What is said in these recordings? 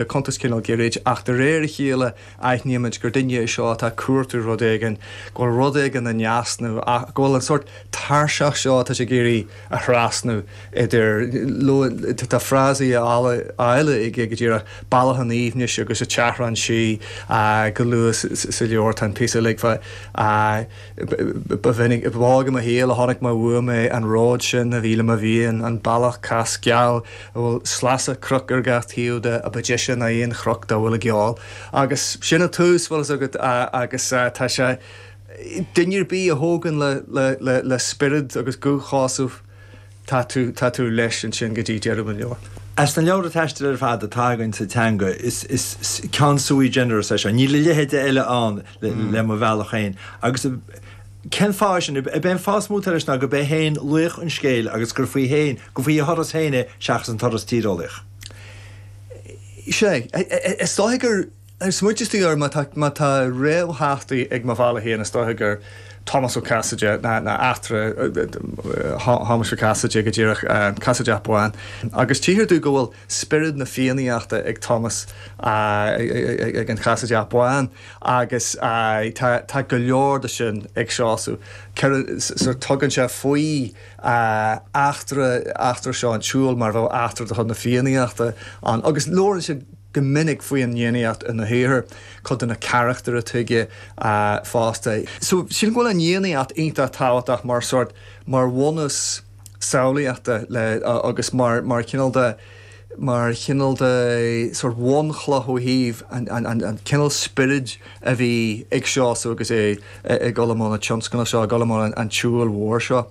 le cuntas cineál gairid, ach de réir a chéile aithnímid gur duine é seo atá ag cuartú rud éigin, go bhfuil rud éigin in easnamh, go bhfuil an sórt tairseach seo atá sé ag iarraidh a thrasnú idir, luann, tá frásaí áille aige go díreach, bealach an aoibhnis agus a chaithreán sí. Go luath sa leabhar tá an píosa a ligfeadh, ba mhinic, ba bheag i mo shaol a chonaic mé uaim é, an ród sin a bhí le mo mhian, an bealach cas geal, a bhfuil sleasa cnoc ar gach taobh de, a ba deise ná aon chnoc dá bhfuil i gceol. Agus sin an tús, bhfuil fhios agat, agus tá sé, duine ar bith a thógann le spiorad agus guth Sheosaimh, tá tú leis ansin go dtí deireadh an leabhair. As na leabhra taistil ar fad atá againn sa teanga, is ceann sui generis é seo. Níl a leithéide eile ann le mo bhealach féin. Cén fáth sin? B'é an fáth is mó atá leis ná gurb é féin laoch an scéil agus gur faoi féin, gur faoi a thuras féin é seachas an turas tíreolaíoch. Sea, is dóigh gur smaointigh tú air, má tá réamhtheachtaí ag Mo Bhealach Féin, is dóigh gur Tomás Ó Casaide, nó eachtra Thomáis Mhic Casaide go díreach, Casaideach Bán, agus tchíthear domh go bhfuil. spiorad na Fiannaíochta ag Tomás ag an Chasaideach Bán agus tá go leor de sin ag Seosamh. Tugann sé faoi eachtra seo an tsiúil mar a bheadh eachtra de chuid na Fiannaíochta ann agus labhrann sé go minic faoin fhiannaíocht ina shaothar, cuid de na carachtair atá aige fosta. Sílim go bhfuil an fhiannaíocht iontach tábhachtach mar bhunús. samhlaíochta le agus mar mar chineál de mar chineál de sort of bhunchloch ó thaobh an an an an cineál spioraid a bhí ag Seosamh agus é ag dul i mbun an tionscnaimh seo, ag dul i mbun an an tsiúil mhóir seo.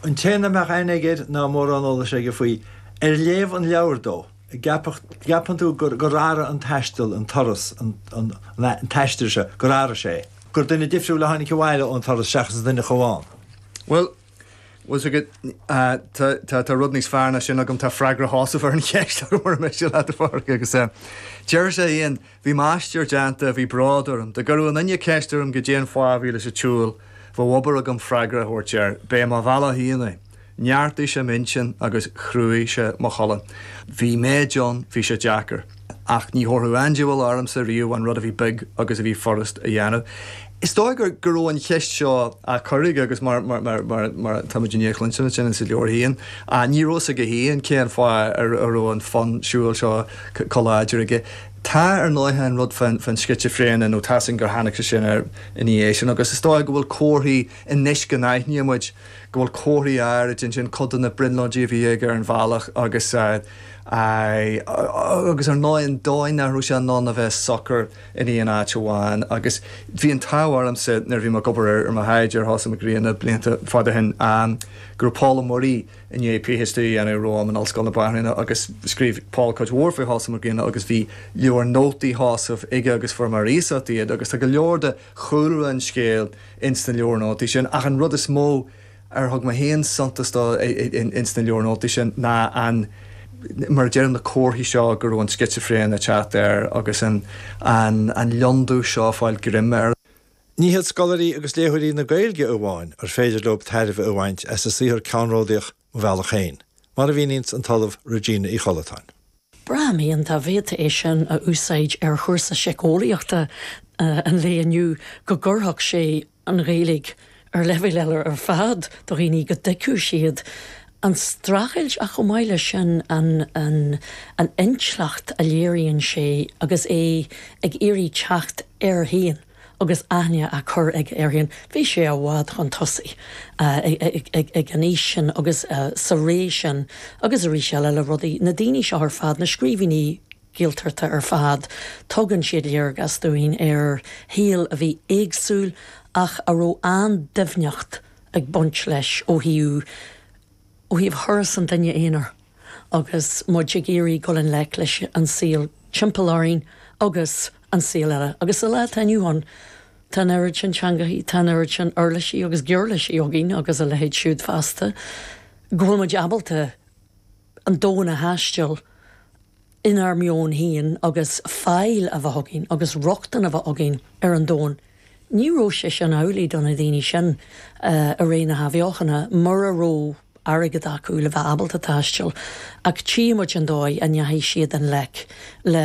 An té nach mbeadh aithne aige air ná mórán eolais aige faoi, ar léamh an leabhair dó, gceapfadh gceapann tú gur gur athraigh an taisteal, an turas, an an an taisteal seo, gur athraigh sé é, gur duine difriúil a tháinig abhaile ón turas seachas an duine a chuaigh ann. Bhuel, Bhuel, tá go, tá, tá, tá rud níos fearr ná sin agam, tá freagra Sheosaimh ar an cheist murar miste leat, a Phádraig, agus eh, deir sé fhéin, bhí m'aistear déanta, bhí bród orm, dá gcuireadh aon duine ceist orm goidé an fáth a bhí leis an tsiúl, bheadh obair agam freagra a thabhairt air, b'é mo bhealach fhéin é. Neartaigh sé m'intinn agus chruaigh sé mo cholainn. Bhí méid ann, bhí sé deacair. Ach ní thabharfadh an diabhal ormsa riamh an rud a bhí beag agus a bhí furast a dhéanamh. Is dóigh go raibh an cheist seo á cur aige agus mar atáimid i ndiaidh a chluinstin ansin insa leabhar féin, ní raibh a fhios aige féin cén fáth a raibh an fonn siúil seo comh láidir aige. Tá, ar ndóighe, an rud fán scitsifréine, nó tá a fhios againn gur tháinig sé sin air ina dhiaidh sin, agus is dóigh go bhfuil comharthaí, anois go n-aithníonn muid go bhfuil comharthaí áirid ansin, cuid de na, brionglóidí a bhí aige ar an bhealach agus, Agus ar ndóigh, an dóigh nach raibh sé in ann a bheith socair in aon áit amháin. Agus bhí an t-ádh ormsa, nuair a bhí mé ag obair ar mo thaighde ar Sheosamh Mac Grianna blianta fada ó shin, go raibh Pól Ó Muirí i ndiaidh PhD a dhéanamh romham in Ollscoil na Banríona agus scríobh Pól cuid mhór faoi Sheosamh Mac Grianna agus bhí leabhair nótaí Sheosaimh aige agus fuair mé ar iasacht iad agus tá go leor de chúlra an scéil ins na leabhair nótaí sin ach an rud is mó ar thug mé féin suntas dó ins na leabhair nótaí sin ná an, mar a deirim, na comharthaí seo go raibh an scitsifréine ag teacht air agus an lionndubh seo ag fáil greim air. Ní hiad scoláirí agus léitheoirí na Gaeilge amháin ar féidir leo tairbhe a bhaint as a saothar ceannródaíoch Mo Bhealach Féin, mar a mhíníonn an tOllamh Regina Uí Chollatáin. Braithim féin dá bhféadfaí é sin a úsáid ar chúrsa síceolaíochta an lae inniu go gcuirfeadh sé an Ghaeilge ar leibhéal eile ar fad do dhaoine, go dtuigfeadh siad an streachailt ach chomh maith leis sin an intleacht a léiríonn sé agus é ag iarraidh teacht air féin. Agus aithne á cur aige air féin, bhí sé i bhfad chun tosaigh ag an aois sin agus sa ré sin agus arís eile le rudaí. Na daoine seo ar fad, na scríbhinní Gaeltachta ar fad, tugann siad léargas dúinn ar shaol a bhí éagsúil ach a raibh an-doimhneacht ag baint leis ó thaobh thuras an duine aonair. agus muid ag iarraidh dul i ngleic leis an saol timpeall orainn agus an saol eile. Agus sa lá atá inniu ann, tá an oiread sin teangachaí, tá an oiread sin uirlisí agus giuirlisí againn, agus a leithéid siúd feasta, go bhfuil muid ábalta an domhan a thaisteal, inár meon féin agus fáil a bheith againn agus rochtain a bheith againn ar an domhan, ní raibh sé sin amhlaidh do na daoine sin i ré na hAthbheochana mura raibh airgead acu le bheith ábalta taisteal, ach tchí muid an dóigh a ndeachaigh siad i ngleic le